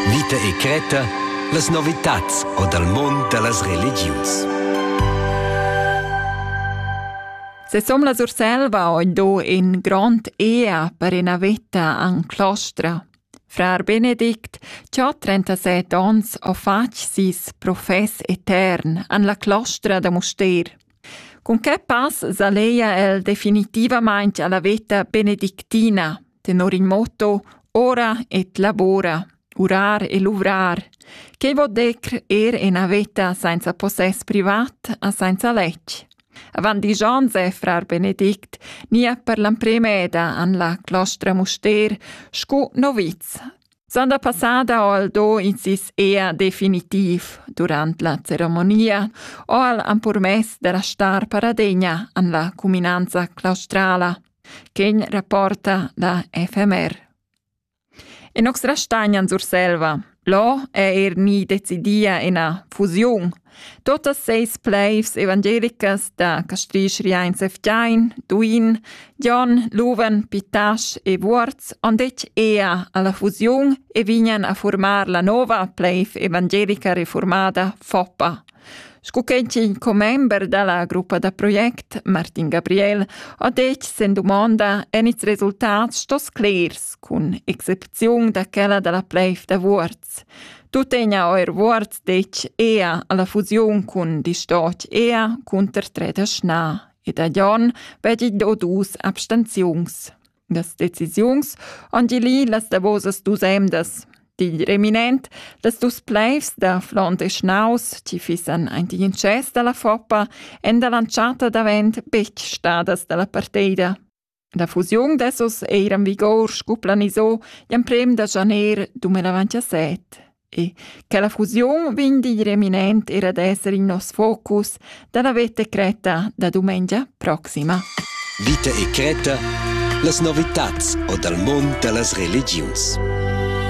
Vita e cretta, las novitads o dal mund da las religiuns. Sesom la Surselva ho do in grond ea per ina veta an Clostra. Frar Benedict, cha ha 37 ons, ho fatg sis profess etern an la Clostra da Mustér. Cun che pass s'alleia el definitivamaing alla veta benedictina? tenor il motto ora et labora, urar e luvrar, che vo decr er ena veta sainza possess privat a sainza lec. Avant di Jose, frar Benedict, nia per l'ampremeda an la clostra muster scu noviz. Sanda passada aldo in sis ea definitiv durant la ceremonia o al ampurmess della star paradegna an la cuminanza claustrala – Quegn rapporta da FMR. In nox rastagnan Surselva. Là è er ni decidia ina fusiun. Totas seis pleivs evangelicas da Castrisch Riains Eftein, Duin, Jon, Luven, Pitasch e Vuorz han detg ea alla fusiun e vignan a formar la nova pleiv evangelica reformada FOPA. Scu ch'ein tgin commember dalla gruppa da project, Martin Gabriel, ha detg sen dumonda en ils resultats sto sclers cun excepziun da quella dalla pleiv da Vuorz. Tuttegna eir Vuorz detg ea alla fusiun cun Distot ea cunter Treda Schna ed a Jon vegli do dus abstenziuns. Das Dezisions-Andili las davosas dus emdas. Digl reminent, las dus pleivs da Flond e Schnaus, chi fissan aint igl intschess dalla Foppa, èn dall'antschatta davent betg stadas dalla parteida. La fusiun dessos eira in vigor scu planiso gl'emprem da janer 2017. E che la fusiun vegn digl eminent era d'esser in nos focus dalla veta cretta da dumengia proxima. Vita e cretta, las novitats o dal mond da las religiuns.